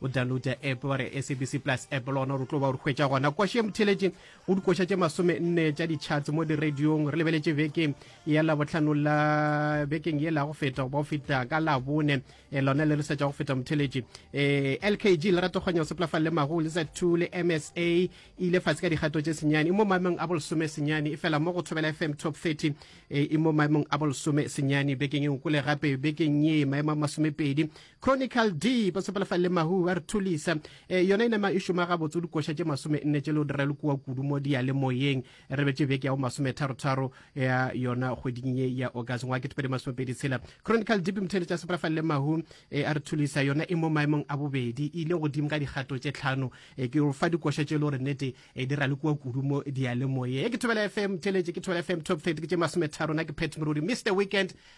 O downloade app wa re SABC Plus app le gona re tlo ba o re hwetša gona. Koša e motheletše go dikoša tše masome nne tša di-charts mo diradiong. Re lebeletše beke ya labotlhano la bekeng ye la go feta goba go feta ka labone e lona le re setša go feta motheletše um lkg lerato kganya seplafa le mago le za two le msa e ile fatshe ka dikgato tše senyane e mo maemong a bolesome senyane e fela mo go thobela fm top 30 e mo maemong a bolesome senyane bekeng e ngwe kole gape bekeng ye maemo a masomepedi Conical D ba sepelefa le mahu ba re thulisa e, yona inama e šoma gabotse o dikoša tše masome nne tše le o dira le kua kudu mo diyalemoyeng re betse beke ya bo masome tharotharo ya yona kgweding ye ya august ngwa ketepedi masomepedi tshela chronical deep mothele tša sepelefa le mahu e, a re thulisa yona e mo maemong a bobedi e ile godimo ka dikgato tše tlhano e, ke fa dikoša tše le gore nnete e dira le kua kudu mo diyalemoyeng e ke thobela fm theletše ke thobela fm top 30 ke tše masome tharo na ke pet morodi mr weekend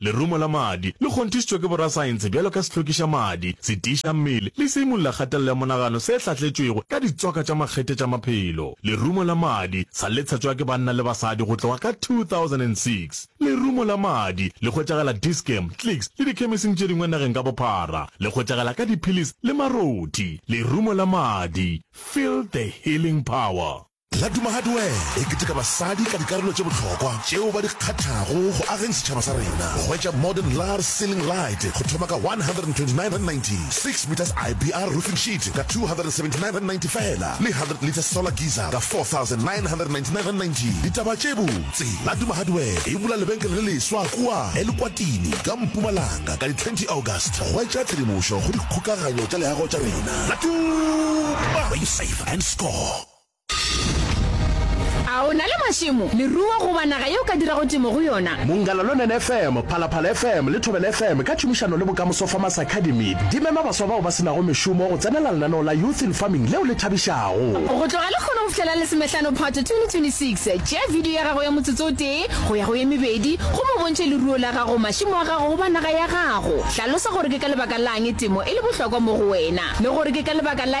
Lerumo la madi le kgonthišitšwe ke borasaense bjalo ka sehlokišamadi, setiišammele le seimolelakgatelelo ya monagano se hlatletšwego ka ditswaka tša makgethe tša maphelo. Lerumo la madi sa le tshetšwa ke banna le basadi go tloga ka 2006. Lerumo la madi le hwetšagala Dis-Chem, Clicks le dikhemising tše dingwe nageng ka bophara. Le hwetšagala ka diphilisi le marothi. Lerumo la madi, Feel the healing power. La Duma Hardware e keteka basadi ka dikarolo tše bohlokwa tšeo ba di kgathago go ageng setšhaba sa rena. Hwetša Modern Lar Ceiling Light go thoma ka R129.90, Six Meters IBR Roofing Sheet ka R279.90 fela le Hundred Litres Solar Geyser ka R4,999.90. Ditaba tše botse, La Duma Hardware e bula lebenkele le leswa kua Elukwatini ka Mpumalanga ka di 20 August. Hwetša tshedimošo go dikgokaganyo tša leago tša rena. La Duma, where you save and score. A o na le mašemo, leruo goba naga ye o ka dirago temo go yona? Mongalalonen FM, Phalaphala FM le Thobela FM ka tšhomišano le Bokamoso Farmers Academy di mema baswa bao ba se nago mešomo go tsenela lenaneo la Youth in Farming leo le thabišago. Go tloga lekgono go fihlela Lesomehlano Phato 2026, tšea bidio ya gago ya motsotso o tee go ya go ye mebedi gomme o bontšhe leruo la gago, mašemo a gago goba naga ya gago. Hlalosa gore ke ka lebaka la'ng temo e le bohlokwa mo go wena le gore ke ka lebaka la